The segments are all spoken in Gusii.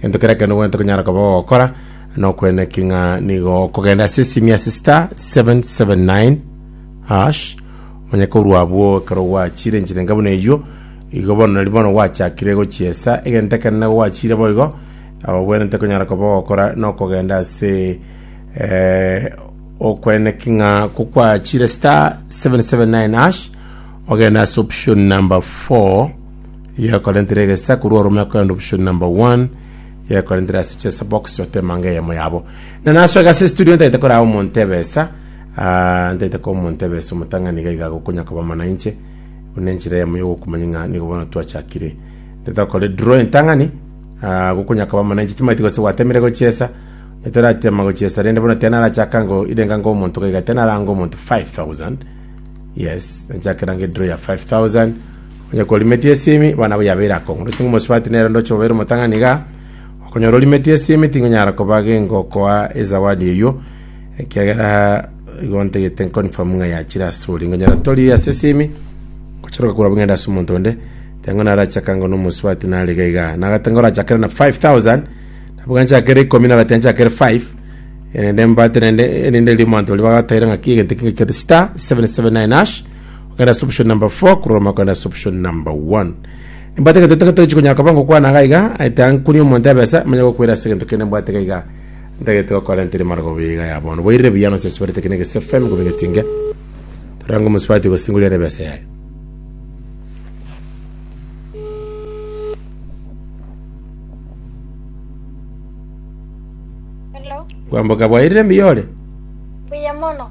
Gento keria kende ogwenerete konyara koba ogokora, nokweneki ng'a nigo okogenda ase esimia ase star 779 hash, omanye korwa abwo ekero gwachire enchirenga buna eywo, igo bono nari bono gwachakire gochiesa, egento ekende nigo gwachire boigo, obwenerete konyara koba ogokora nokogenda ase okweneki ng'a kokwachire star 779 hash, ogende ase option number four. Yakorentire egesa korwa orome akoenda option number one yakorentire ase chesa box otemanga eyemo yabo na naso egasa estudio ntaite koraa omonto ebesa ah, ntaite kwa omonto ebesa omotang'ani iga iga gokonya koba mana inche buna enchera eyemo yogokumanya ng'a nigo bono twachakire ntaite okore draw entang'ani ah, gokonya koba mana inche timaiti gose gwatemire gochiesa etoratema gochiesa rende bono tiana arachaka ngo irenga ngo omonto gaiga tiana aranga omonto 5000 yes nchakerange draw ya 5000 Onye kworimetie esimi, bana abwo yabeire akong'urwa ching'u mosubati, nere ndoche obeire omotang'ani igaa. Okonyora orimetie esimi, tingonyara koba gengokoa ezawadi eyio, ekiagera igo ntagete nconfirm ng'a yachire asore. Nkonyora tori ase esimi, ngochoroka korwa abwo ng'ende ase omonto onde, teba ng'a narachie akango na omosubati nare iga igaa. Nagete nkorachakere na five thousand, nabwo ganchakere ikomi nagete nchakere five, erinde mbate naende erinde riria omonto oria bagataire ng'a ki egento ekio ngekio star, seven, seven, nine, hash, okogenda ase option number 4 kororoma okogenda ase option number 1 nimbwate egento totagete tochikonyara koba ngokwana iga iga ete ankunie omonto ebesa manye gokwera ase egento kende mbwate iga iga ntagete gokora ntiri marogoba iga ya bono boirire buya nonsi asubarete kene egese fm gobe getinge torange omusubati gosingoria ere ebesa yaye Hello, kwamboka bwairire mbiyore buya mono.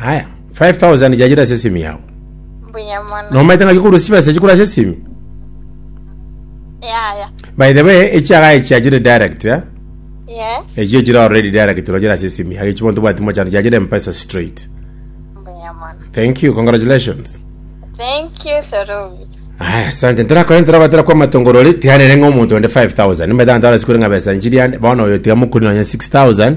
Aya, 5000 ya yire ase esimi yao. Mbuya mono. Nomaete ng'aki korwa chibesa echi korwa ase esimi. Yaya. By the way, echiaga echi achire direct, eh? Yes. Echi echire already direct rochire ase esimi yao. Echi bonto bwati mochano chachire mpesa straight. Mbuya mono. Thank you, congratulations. Thank you, Sarubi. Aya, asante. Ntorakore ntorabatera kwa matongorori tiganere ng'a omonto onde 5000. Nimbeta ntara sikure ng'a besa nchiri ande. Bono oyo tiga mokuri nonya 6000.